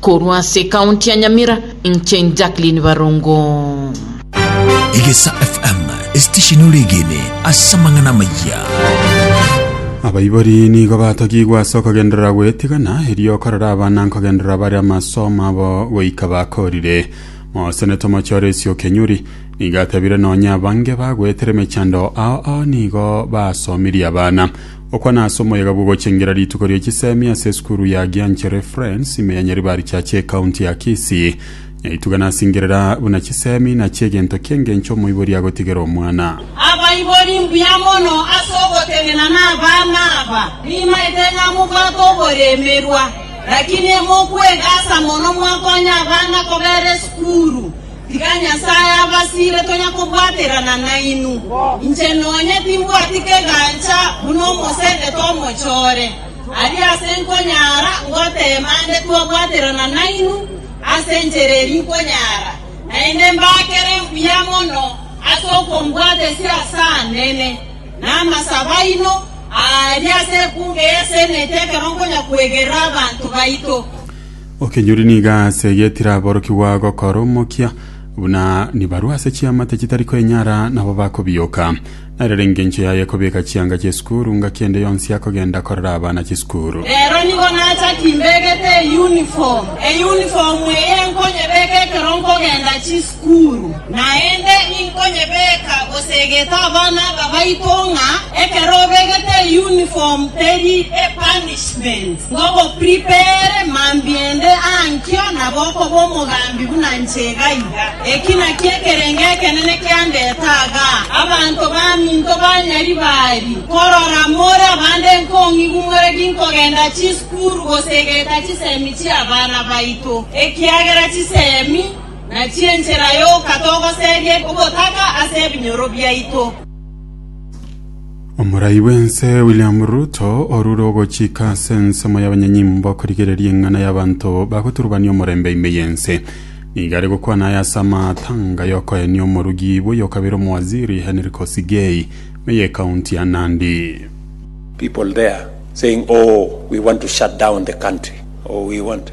Korwa ase ekaunti ya Nyamira, inche Jacqueline Barongo. Egesa FM, esitesheni ore egene ase amang'ana amayia. Abaibori nigo batogigwe ase okogenderera gwetigana, erio okorera abana nkogenderera bare amasomo abo goika bakorire. Mosenete omochore Esio Kenyuri, Nigo atebire nonya abange bagoetera emechando ao ao nigo basomirie abana. Okwana ase omoyega bw'ogochengera rituko ria chisemi ase esukuru ya Gianchere Friends ime ya Nyaribari Church ekaunti ya Kisii. Nyaituga nasingerera buna chisemi nachio egento ki'engencho omoibori agotigera omwana. Abaibori mbuya mono ase ogotenena nabana aba, nimaete ng'a mobwate oboremerwa, lakini mokwegasa mono mwakonye abana kobera esukuru. Tiga Nyasae abasiire tonya kobwaterana nainwe. Inche nonya timbwati kegancha buna omosendete omochore. Aria ase nkonyara ngoteema nde twabwaterana nainwe ase enchera eri nkonyara, naende mbakere mbuya mono ase okombwatesia ase anene, na amasabo aino aa aria ase ekungu eyaseneti ekero nkonya kwegerera abanto baito. Okenyori nigo aase getiraborokigwa gokora omokia, buna nibarue ase chiamate chitari kwenyara nabo bakobioka. Narere engencho yaye kobeka chianga chi'esukuru, ngaki ende yonsi akogenda korera abana chisukuru. Rero nigo nachaki imbegete eyunifomu, eyunifomu eye nkonyebeka ekero nkogenda chisukuru. Sukuru, naende inkonyebeeka gose egete abana aba baito ng'a ekero obegete eyuniform teri epunishment, ngogopripere mambiendi aa nkio nabo okoba omogambi buna inche iga iga. Eki nakio ekerengo ekenene kiandete aaga, abanto baminto ba Nyaribari, korora more abande nkong'igu more ginkogenda chisukuru gose egeta chisemi chi'abana baito, ekiagera chisemi Na chi'enchera yoka togoseria ogotaka ase ebinyoro biaito. Omorai bw'ense William Ruto orure ogochika ase ensemo y'abanyanyimbo korigereria eng'ana y'abanto bagoturubania omorembe ime y'ense. Nigo are gokwana aya ase amatanga y'okoenia omorugi bw'oyokabere omowaziri Henry Kosigei me y'ekaunti ya Nandi. people there saying oh we want to shut down the country oh we want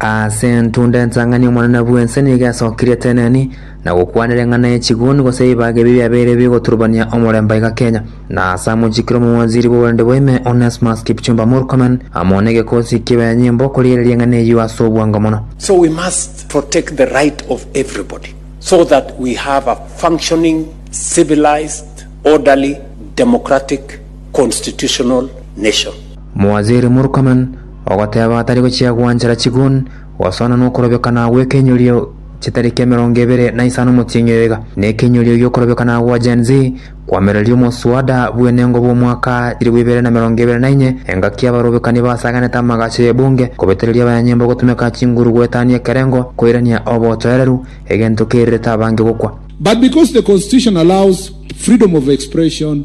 Ase entunda entang'ani Omonene bw'ense nigo esokirie eteneni na gokwanera eng'ana ye chiguni gose ebibaga ebi biabeire bigoturubania omorembe aiga Kenya. Na ase amochikire omowaziri bw'oborende bwa ime Onesmus Kipchumba Murkomen amo negekosi ekibe nyimbo korigereria eng'ana eyio ase obwango mono. So we must protect the right of everybody so that we have a functioning, civilised, orderly, democratic, constitutional nation. Mowaziri Murkomen ogoteeba atari gochia gwanchera chigun goswana nokorobekana gw'ekeinyorio chitariki emerongo ebere na isano motieng'io iga, na ekeinyorio gi'okorobekana gwa Gen-Z kwamereria omoswada bw'enengo bw'omwaka chilifu ibere na emerongo ebere na inye, engaki y'abarobekani basaganete amagacho y'ebunge, kobetereria abanyanyembo gotumeka chinguru goetania ekerengo, koirania obotoereru, egento kerirete abange gokwa. But because the constitution allows freedom of expression,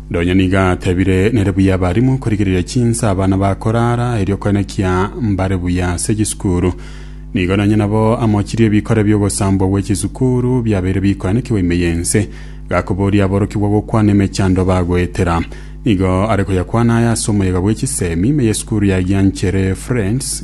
Nonya nigo atebire, Nere buya abarimu korigereria chinsa abana bakoraara, erio koene kia mbare buya ase chisukuru. Nigo nonya nabo amochirie ebikore bi'ogosambwa gwe chisukuru biabeire bikoanekigwa ime y'ense, gakoboria aborokigwa gokwana emechando bagoetera. Nigo are koyakwana aya ase omoyega bwe chisemi, ime y'esukuru ya Gianchere Friends,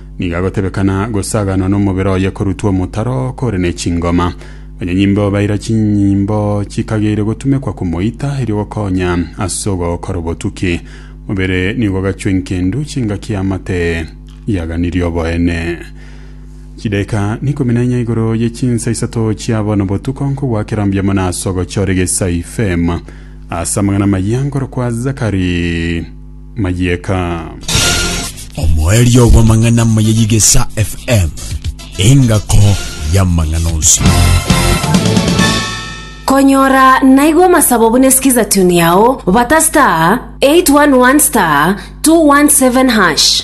Nigo agotebekana gosaganwa nomobere oye korutwa omotaro kore ne chingoma. Banyanyimbo baira chinyimbo chikageire gotumekwa komoita erio gokonya ase ogokora obotuki. Mobere nigo ogachwa enkendu chingaki amate yaganirie oboene. Chidaika nikumi na inya igoro ye chinsa isato chia bono botuko nkogwakera mbiamo na ase ogochora egesai fem ase amang'ana amaya nkorokwa Zakari. mayieka. Omoerio bw'amang'ana amaya y'Igesa FM, engako y'amang'ana onsi. Konyora naigo amasabo buna sikiza tune yao bata star 811 star 217 hash.